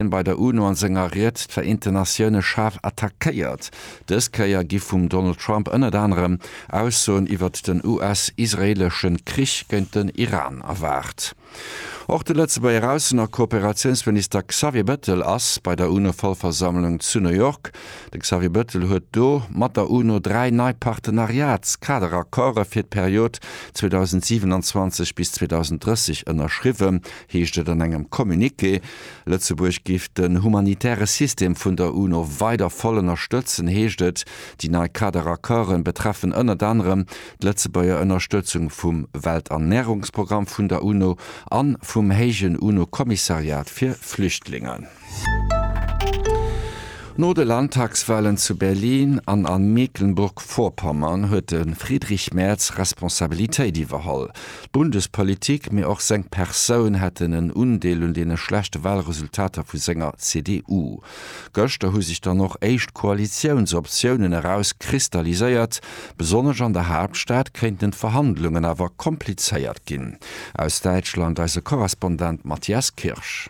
Hien bei der UNO an senger Ried d'Vereenten Natioune schaarf attackéiert. Dës Kéier gi vum Donald Trump ënnert anerem Aussoen iwwert den US-israeelesche Krich géint den Iran erwaart. Och de Lëtzebuerger Aussen a Kooperatiounsminister Xavier Bettel ass bei der UNO-Vollversammlung zu New York. De Xavier Bettel huet do mat der UNO dräi nei Partenariats-Kaderaccorde fir d'Period 2027 bis 2030 ënnerschriwwen, heescht et an engem Communiqué. Lëtzebuerg géif den humanitäre System vun der UNO weider voll ënnerstëtzen, heescht et. Déi nei Kader-Accorde betreffen ënnert anerem d'Lëtzebuerger Ënnerstëtzung vum Welternärungsprogramm vun der UNO a vum héijen UNO-Kommissariat fir Flüchtlingen. No de Landtagswahlen zu Berlin an a Mecklenburg-Vorpommern huet de Friedrich Merz Responsabilitéit iwwerholl. D'Bundespolitik, mee och seng Persoun hätten en Undeel un deene schlechte Wahlresultater vu senger CDU. Gëschter hu sech dann och éischt Koalitiounsoptiounen eraus kristalliséiert. Besonnesch an der Haaptstad kéinten d'Verhandlungen awer komplizéiert ginn. Aus Däitschland eise Korrespondent Matthias Kirsch.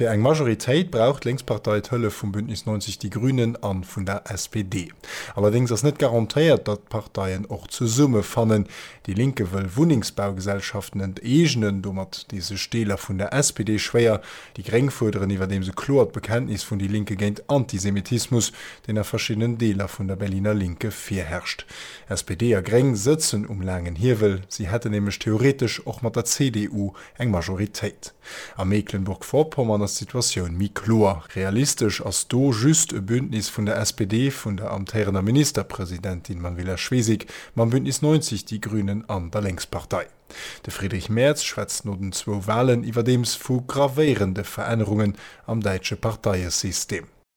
Fir eng Majoritéit brauch d'Lénkspartei d'Hëllef vum Bündnis 90 Die Grünen a vun der SPD. Allerdéngs ass net garantéiert, datt d'Parteien och zesumme fannen. Déi Linke wëll Wunnengsbaugesellschaften enteegnen, domat dee sech Deeler vun der SPD schwéier. Déi Gréng fuerderen iwwerdeems e kloert Bekenntnis vun Die Linke géint Antisemitismus, deen a verschiddenen Deeler vun der Berliner Linke virherrscht. SPD a Gréng sëtzen um laangen Hiewel, si hätten nämlech theoretesch och mat der CDU eng Majoritéit. A Meeklenburg-Vorpommern ass d'Situatioun méi kloer. Realistesch ass do just e Bündnis vun der SPD, vun der amtéierender Ministerpresidentin Manuela Schwesig, mam Bündnis 90 Die Grünen an der Lénkspartei. De Friedrich Merz schwätzt no den zwou Walen iwwerdeems vu gravéierende Verännerungen am däitsche Parteiesystem.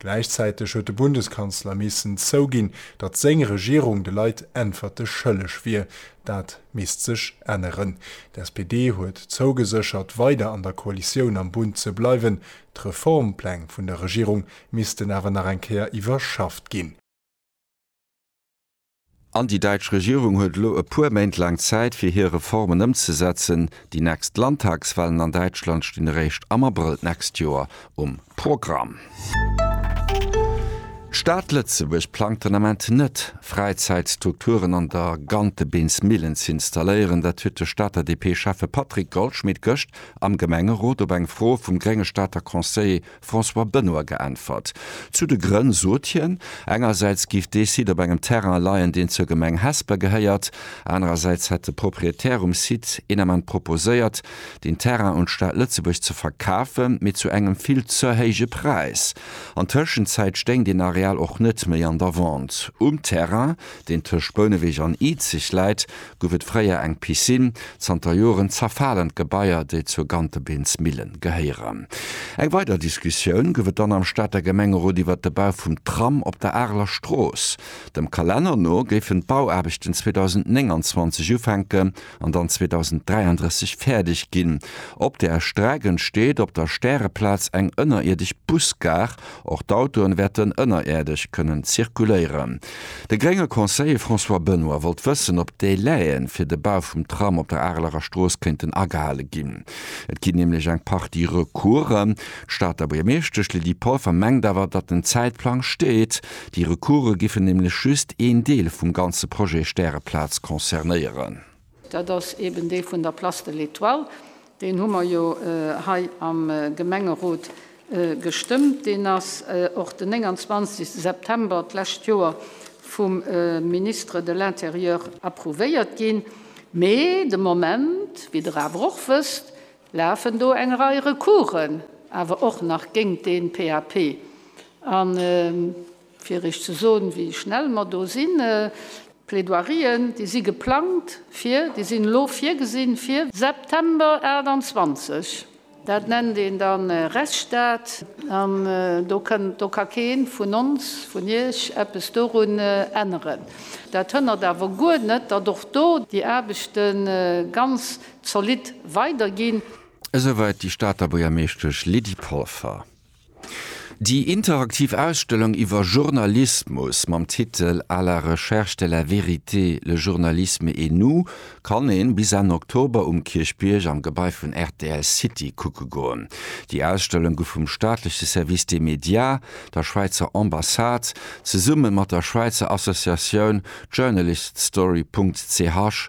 Gläichzäiteg huet de Bundeskanzler missen zouginn, datt seng Regierung de Leit Äntwerte schëlleg wier. Dat misst sech änneren. D'SPD huet zougeséchert, weider an der Koalitioun am Bund ze bleiwen. D'Reformpläng vun der Regierung missten awer nach eng Kéier iwwerschafft ginn. An déi däitsch Regierung huet elo e puer Méint laang Zäit, fir hir Reformen ëmzesetzen. Déi nächst Landtagswahlen an Däitschland stinn eréischt am Abrëll d'nächst Joer um Programm. D'Stad Lëtzebuerg plangt den Ament net, Fräizäitstrukturen an der Gantebeensmillen ze installéieren. Dat huet de Stater DP-Schäffe Patrick Goldschmit gëscht am Gemengerot op eng Fro vum grénge Stater Conseiller François Benoy geäntwert. Zu de Grënn sot hien, engersäits géif dee Site op engem Terrain leien, deen zur Gemeng Hesper gehéiert, anerersäits hätt de Proprietär um Site een Ament proposéiert, deen Terrain un d'Stad Lëtzebuerg ze verkafen, mee zu engem vill ze héije Präis. An Tëschenzäit stéing deen Areal och net méi an der Vente. Um Terrain deen tëscht Bouneweg an Izeg läit, gouf et fréier eng Piscine. Zanter Joren zerfalen d'Gebaier, déi zur Gantebeensmillen gehéieren. Eng weider Diskussioun gouf et dann am Stater Gemengerot iwwert de Bau vum Tram op der Areler Strooss. Dem Kalenner no géifen d'Bauaarbechten 2029 ufänken. an dann 2033 fäerdeg ginn. Op där Streck entsteet op der Stäreplaz eng ënnerierdesch Busgare, och d'Autoen wäerten ënneräerdeg kënnen zirkuléieren. De grénge Conseiller François Benoy wollt wëssen, op d'Délai'en fir de Bau vum Tram op der Areler Strooss kéinten agehale ginn. Et ginn nämlech eng Partie Recoursen. D'Stater Buergermeeschtesch Lydie Polfer mengt awer, datt den Zäitplang steet. Déi Recourse giffen nämlech just een Deel vum ganze Projet Stäreplaz concernéieren. Dat ass eeben dee vun der Place de l'Etoile. Deen hu mer jo hei am Gemengerot gestëmmt. Deen ass och den 29 September d'lescht Joer vum Ministre de l'Intérieur approuvéiert ginn. Mee de Moment, wéi Der awer och wësst, lafen do eng Rei Recoursen awer och nach géingt dee PAP. An fir Iech ze soen, wéi schnell mer do sinn, D'Plaidoirien, déi si geplangt fir, déi sinn elo virgesinn fir. September 28. Dat nennt een da Rechtsstaat. An do kënnt, do ka kee vun ons, vun Iech eppes dorun änneren. Dat hënnert awer guer net, datt och do déi Aarbechte ganz Zolidd weider ginn. Esouwäit déi Stater Buergermeeschtesch Lydie Polfer. Déi interaktiv Ausstellung iwwer Journalismus mam Titel À la recherche de la vérité, le journalisme et nous kann ee bis Enn Oktober um Kierchbierg am Gebai vun rtl City kucke goen. Déi Ausstellung gouf vum staatleche Service des médias, der Schwäizer Ambassade, zesumme mat der Schwäizer Associatioun Journaliststory.ch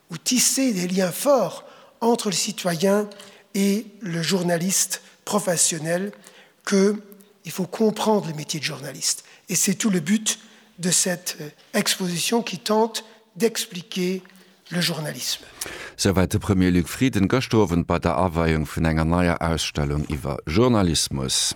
ou tisser des liens forts entre le citoyen et le journaliste professionnel que il faut comprendre le métier de journaliste et c'est tout le but de cette exposition qui tente d'expliquer le journalisme. Souwäit de Premier Luc Frieden gëscht Owend bei der Aweiung vun enger neier Ausstellung iwwer Journalismus.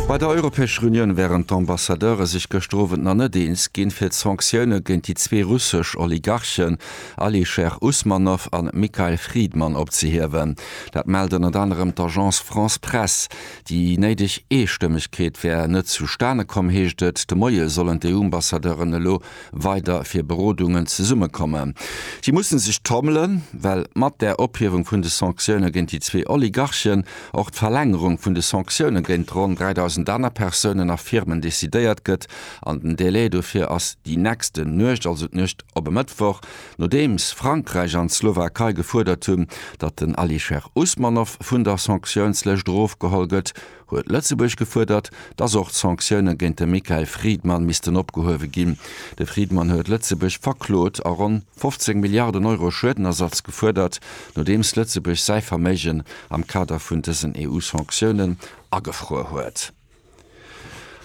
Bei der Europäescher Unioun wären d'Ambassadeure sech gëschter Owend nach net eens ginn, fir d'Sanktioune géint déi zwee russesch Oligarchen Alisher Usmanov a Mikhail Fridman opzehiewen. Dat mellt ënnert anerem d'Agence France-Presse. Déi néideg Eestëmmegkeet wär net zustane komm, heescht et. De Moie sollen d'EU-Ambassadeuren elo weider fir Berodungen zesummekommen. Si musse sech trommelen, well mat där Ophiewung vun de Sanktioune géint déi zwee Oligarchen och d'Verlängerung vun de Sanktioune géint ronn 3.000 aner Persounen a Firmen decidéiert gëtt an den Délai dofir ass déi nächst Nuecht, also d'Nuecht op e Mëttwoch, nodeems Frankräich an d'Slowakei gefuerdert hunn, datt den Alisher Usmanov vun der Sanktiounslëscht erofgeholl gëtt. huet Lëtzebuerg gefuerdert, dass och d'Sanktioune géint de Mikhail Fridman missten opgehuewe ginn. De Fridman huet Lëtzebuerg verklot a ronn 15 Milliarden Euro Schuedenersatz gefuerdert, nodeems Lëtzebuerg säi Verméigen am Kader vun dësen EU-Sanktiounen agefruer huet.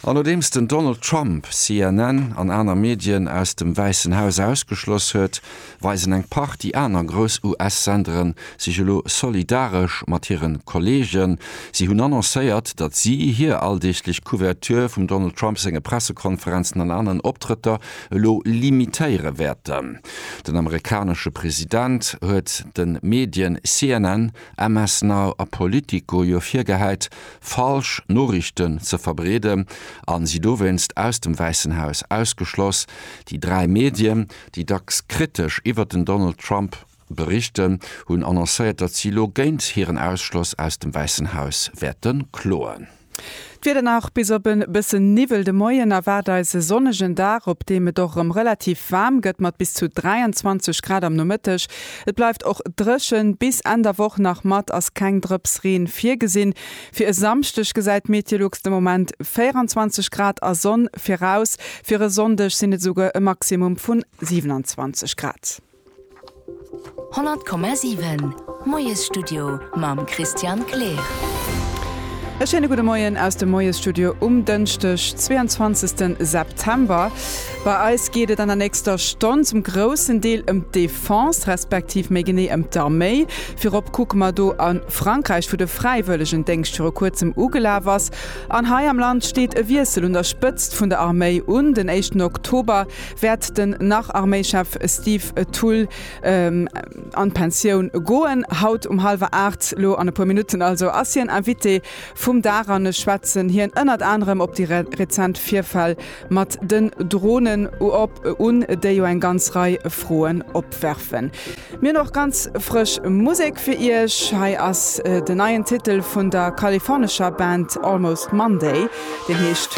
An nodeems den Donald Trump CNN an aner Medien aus dem Wäissen Haus ausgeschloss huet, weisen eng Partie aner grouss US-Sendere sech elo solidaresch mat hire Kolleegen. Si hunn annoncéiert, datt si hir alldeeglech Couverture vum Donald Trump senge Pressekonferenzen an aneren Optrëtter elo limitéiere wäerten. Den amerikanesche President huet de Medien CNN, MS Now a Politico jo virgehäit, falsch Noriichten ze verbreeden a si dowéinst aus dem Wäissen Haus ausgeschloss. Déi dräi Medien, déi dacks kritesch iwwert den Donald Trump berichten, hunn annoncéiert, datt si elo géint hiren Ausschloss aus dem Wäissen Haus wäerte kloen. D'Wieder nach bis op e bësse Niwwel. De Moien erwaart eis e sonnegen Dag, op deem et och erëm relativ waarm gëtt mat bis zu 23 Grad am Nomëtteg. Et bleift och dréchen, bis Enn der Woch nach mat ass keng Drëps Reen virgesinn. Fir e Samschdeg gesäit d'Meteolux de Moment 24 Grad a Sonn viraus, fir e Sonndeg sinn et esouguer e Maximum vun 27 Grad. 100,7 Moiesstudio mam Christian Kleer. E schéine gudde Moien aus dem Moiesstudio um Dënschdeg 22 September. Bei eis geet et an der nächster Stonn zum groussen Deel ëm d'Déif. D'Defense, respektiv méi genee ëm d'Arméi, virop kucke mer do an Frankräich, wou de Fräiwëllegendéngscht viru kuerzem ugelaf ass, an hei am Land steet e Wiessel un der Spëtzt vun der Arméi un. Den éischten Oktober wäert den Nach-Arméichef Steve Thull an d'Pensioun goen. Haut um hallwer aacht, lo an e puer Minutten also, ass hien Invité vum Dag an ech schwätzen hien ënnert anerem op déi rezent Virfäll Mat den Dronen op un, déi jo eng ganz Rei Froen opwerfen. Mir hunn och ganz frësch Musek fir Iech. Hei ass den neien Titel vun der kalifornescher Band Almost Monday, deen heescht.